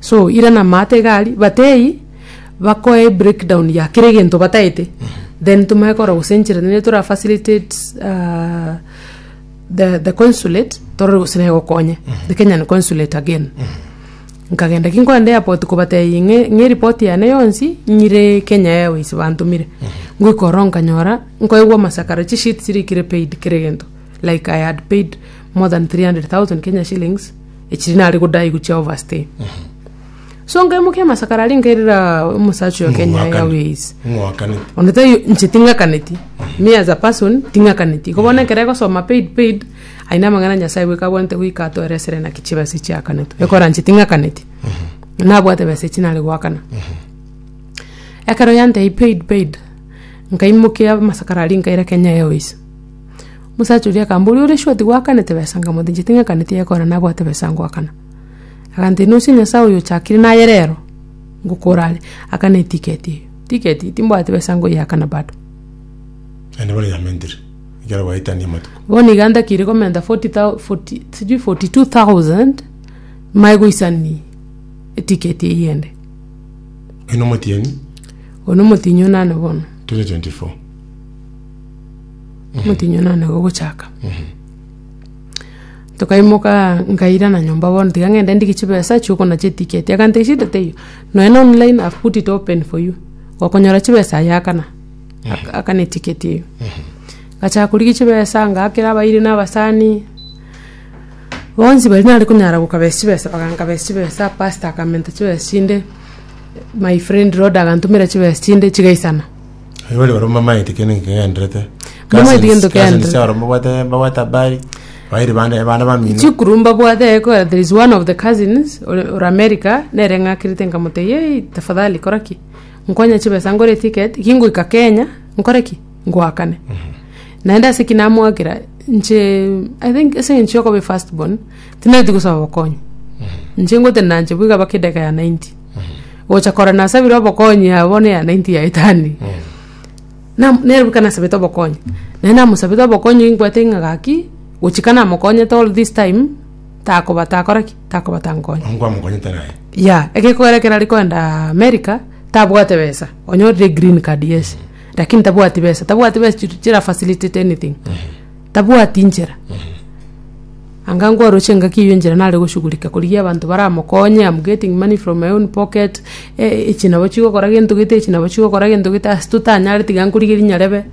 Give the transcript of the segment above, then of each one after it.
so ira na amato iga aria, but eyio, bakoe ebreakdown ya kera egento bataete, then tomanye korora gose enchera nere tora facilitate ahh the the consulate, torore gose nere egokonye, the Kenyan consulate again, nkagenda ki nkogenda airport kobatebia ng'e ng'e eripoti yane yonsi nyire Kenya Airways bantomire, ngoika ororo nkanyora nkoegwa amasakara, chisheet chire ekire paid kera egento, like I had paid more than three hundred thousand Kenya shillings. Echiri nare godai gochia overstay. So nkaimokia amasakara aria nkairera omosacha oyo Kenya Ng'wakane. Airways. Ng'wakane. Onde tai nche ting'akaneti. Me as a person ting'akaneti. Iko bono ekero egosoma paid paid aine amang'ana Nyasae bweka abwanete goika atoera esere naki chibesa chiakanetwe. Ekora nche ting'akaneti. Nabwate besa echi nare goakana. Ekero yantebia paid paid nkaimokia amasakara aria nkaira Kenya Airways. Omosacha oria akamba oria ore sure tigwakanete besa nkamwata inche ting'akaneti egekora nabwate besa ngoakana. Agantera inwe ase Nyasae oyo ochakire naye rero ngokora are, akana etiketi eye. Tiketi eye timbwati besa ngoyeakana bado. Naende bono yamentire, ekero gwaetania amatuko. Bono iga ntakire komenta 40,000 40 sijui 42,000 nimaye goisani etiketi eyio ende. Oino omotienyi, Oyo nomotienyi onane bono. 2024. omotienyi one one gogochaka. Tokaimokaa nkairana nyomba bono tiga ng'ende ndigie chibesa chiokogora chitiketi, agantebia shida teiyo, nonya na online I've put it open for you, okonyora chibesa aye akana, akana etiketi eyio. Ngachaka korigia chibesa ngakera abairi na abasani, bonsi baria nare konyara gokabesa chibesa bagankabesa chibesa, pastor akamenta chibesa chinde, my friend Rhoda agantomera chibesa chinde chigaisana. Aye bare barabwo bamaete kende kegenderete. Bamaete gento kegenderete. Cousins aro mbabwate mbabwate habari. Bairi bande ebana bamino. chikuru mbabwate ekora there is one of the cousins ore ore america nere ng'akerete nkamotebia yei tafadhali kora ki nkonya chibesa ngore eticket kingoika kenya nkore ki ngoakane naende ase ki namoakera inche i think ase eng'encho yokoba efirst born tinareti gosaba obokonyi inche ngotenena inche bweka mpaka edageka ya ninety gocha korora nasabire obokonyi aa bono eyane inti yaetani na nere boka nasabete obokonyi naye namosabete obokonyi nkwete ng'a gaki gochika namokonyete all this time takoba takora ki takoba tankonya Onye kwamokonyete naye. ya egekogera ekero are koenda america tabwate besa onyorire green card yes lakini tabwati besa tabwati besa chi- chira facilitate anything Tabwati inchera. Anga nkwaroche engaki eyio enchera nare goshughulika korigia abanto baramokonye, am getting money from my own pocket, eh, echi nabo chigokora gento gete, echi nabo chigokora gento gete, ase totanyare tiga nkorigerie nyarebe,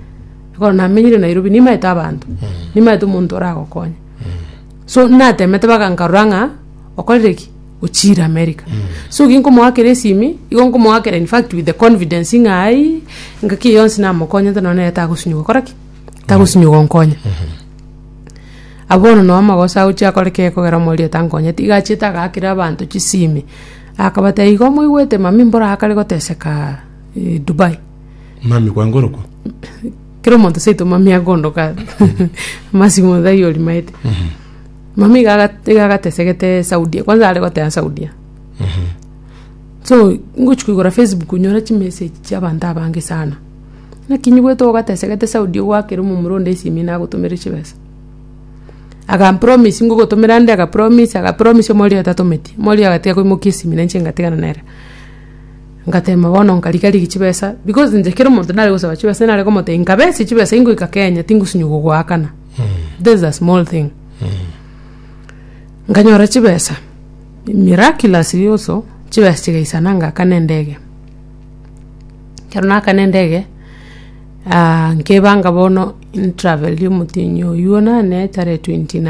ekero namenyire Nairobi, nimaete abanto, nimaete omonto oragokonya. So natemete mpaka nkarora ng'a okorire ki? Ochiire America. So ki nkomoakera esimi, igo nkomoakera in fact with the confidence ng'a aii, engaki eye yonsi namokonyete nonye nere tagosinywa gokora ki? tagosimia ogonkonya. Ah bono noo amagoso agochia akoreka ekogera omoerio tankonyeti, iga achiete agaakera abanto chisimi, akabatebia igo moigwete mami mbora akare gotesekaa eh, Dubai. Mami kwangorokwa. Kera omonto seito mami akondoka amasimo iga aria orimaete. Mami iga aga- iga agatesegete Saudia, kwanza are goteba Saudia. So, ngochia koigora Facebook nyore chimessage chiabanto abange sana. Naki nyigwete ogatesegete Saudi ogwakera omomura onde esimi nagotomere chibesa. Agampromise ngogotomera nde agapromise agapromise omorwiri atatometie. Omorwiri agatiga koimokia esimi nainche ngatigana nere. Ngatema bono nkarigia rigia chibesa because inche kero omonto nare gosaba chibesa nare komotebia nkabe ase chibesa ingoika Kenya tingosinywa gogoakana. This is a small thing. Nkanyora chibesa miraculously also chibesa chigaisana ngakana endege. Ekero nakana endege, nkebanga bono intravel yomotienyi oyio one etare twenty nine.